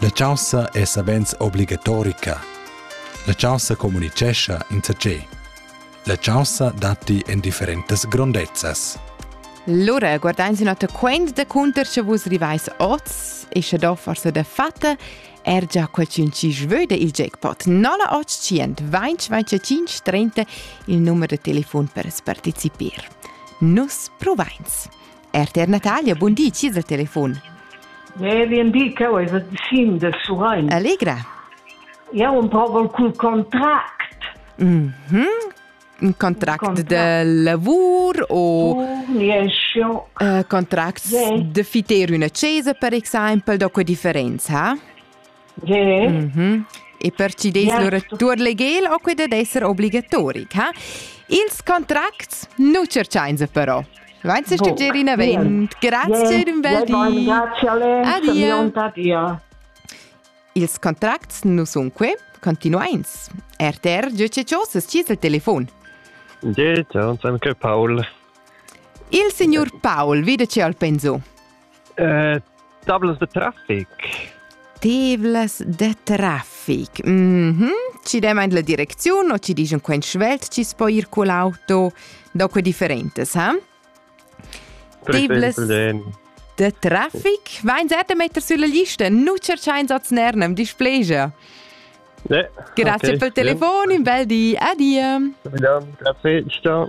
La chaussa è savens obligatorica. La chaussa communicescha insatge. La chaussa datti en differentas grondezzas. Lura guardains in oter quent da cunter sche vus rivais oz e sche do forsa da fatta er già qualcun ci sveu da il jackpot 0800 20 25 30 il numero de telefon per partecipir. Nus provains. RTR Natalia, bun di, ci dal telefon. Ne, vien di, cheu ei vet sin de Surein. Allegra. Jau un proval cul contract. Mhm. Mm un contract, contract de lavur o uh, contract de fiter una cesa per exempel, da que differenza, ha? Mm -hmm. E per ci des yeah. lur legel o quei ded esser obligatoric, ha? Ils contracts nu cerchainsa però. Vainsa stuger in avent. Grazie in bel di. Grazie a Ils contracts nu sun que continuains. RTR GCCOS scis il telefon. Dieta, san che Paul. Il signor Paul vide ce al penso. Uh, tavlas de traffic. Tavlas de traffic. Mm -hmm. Ci demain la direcziun o ci dici quel svelt ci spo ir con l'auto dopo differentes, ha? Tavlas de traffic? Vain sette meter sulla lista, nu cerchain sots nernem, displegia. Ne. Grazie okay. per il telefono, un bel di, addio. Grazie, ciao.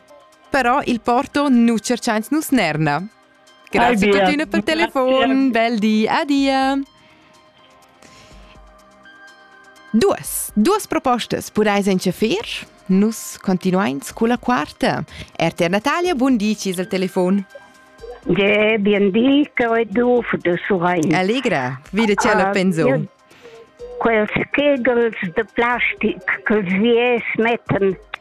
Però il Porto nu tscherchains nus Nerna. Grazie per tuttina per telefon, bel di, adia. Duas, duas propostas podais enchaffer. Nus continuains con la quarta. RTR Natalia, buon di, cis al telefon. Ja, bien di, Coedu, de Surain. Allegra, vide ce la ah, penso. Quels kegels de plastic che sie smetten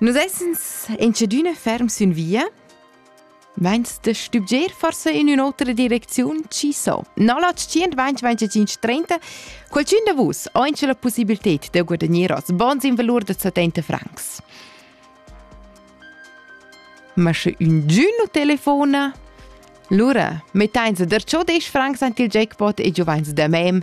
Nus essens incedüna ferm sün via. Vains da stübgier forsa in ün'otra direcziun? Chi so? No la 125-30, qualchün da vus ho incha la possibilted da guadagner hoz bons in valur da 70 francs. Ma sche ün giü nu telefona, lura mettain se der cho 10 francs ant il jackpot e giuvains da mem